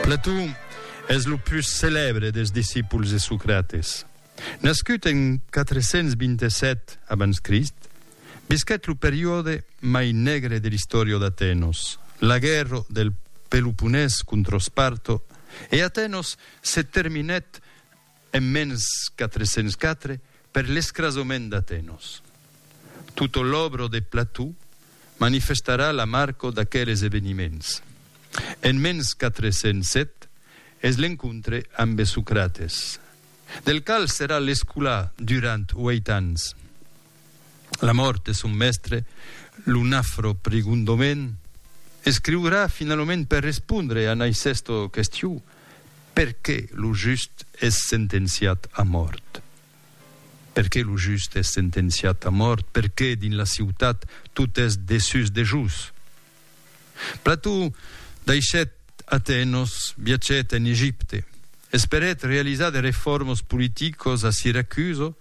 Platon es lo pus celèbre dels discípuls de Socrates. Nascut en 427 abans Crist, visquèt lo periòde mai negre de l'istòria d'Atenos, la guèrra del Peloponés contra Esparto, e Atenos se terminèt En mens 404, per l'escrasament d'Atenos. Tutto l'obro de Plató manifestarà la marco d'aqueles eveniments. En mens 407 es l'encontre ambe Socrates, del qual serà l'escolà durant ueit ans. La mòrt de son mèstre, lo nafro Prigundomen, escriurà finalament per respondre a Naicèsto questions Perqué lo just es sentenciat a mòrt? Perqué lo just es sentenciat a mòrt? Perqué dins la ciutat tot es desús de jus? Plató daishèt Atenos, viatgèt en Egipte, esperèt realizar de reformos politicos a Siracuso,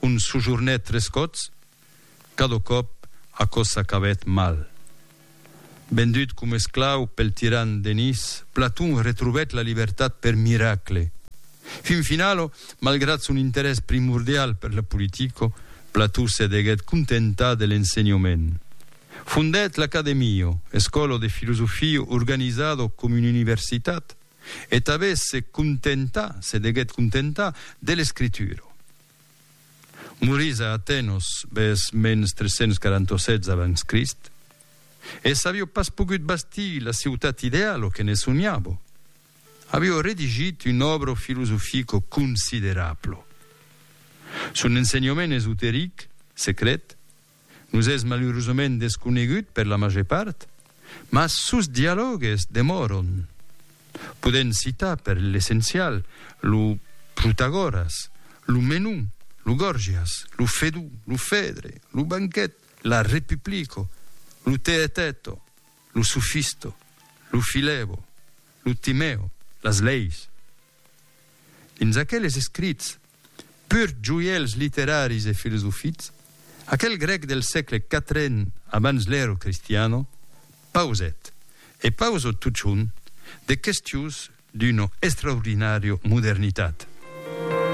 ont sojornèt tres còps, Cada còp aquò s'acabèt mal. Vendut coma esclau pel tiran Denis, Platon retrobèt la libertat per miracle. Fin finala, malgrat son interès primordial per la politica, Platon se deguèt contentar de l'ensenhament. Fondèt l'Academia, escòla de filosofia organizada coma una universitat, e tanben se contentà, se deguèt contentar, de l'escritura. Morís a Atenos bes mens 347 abans Crist, e s'avió pas pogut bastir la ciutat ideal o que ne sonhavo, avió redigit un òbro filosofico considerablo. Son ensenhament esoteric, secret, Nos es malurosament desconegut per la màger part, mas sos dialògues demòron. Podèm citar per l'essencial lo Protagoras, lo Menú, lo Gòrgias, lo Fedú, lo Fedre, lo Banquet, la Repuplico, lo Teeteto, lo Sofisto, lo Filebo, lo Timèo, las leis. Dins aqueles escrits, pur joièls literaris e filosofics, aquel grèc del sègle quatren abans l'èra cristiana pausèt, e pausa totjorn, de questions d'una extraordinària modernitat.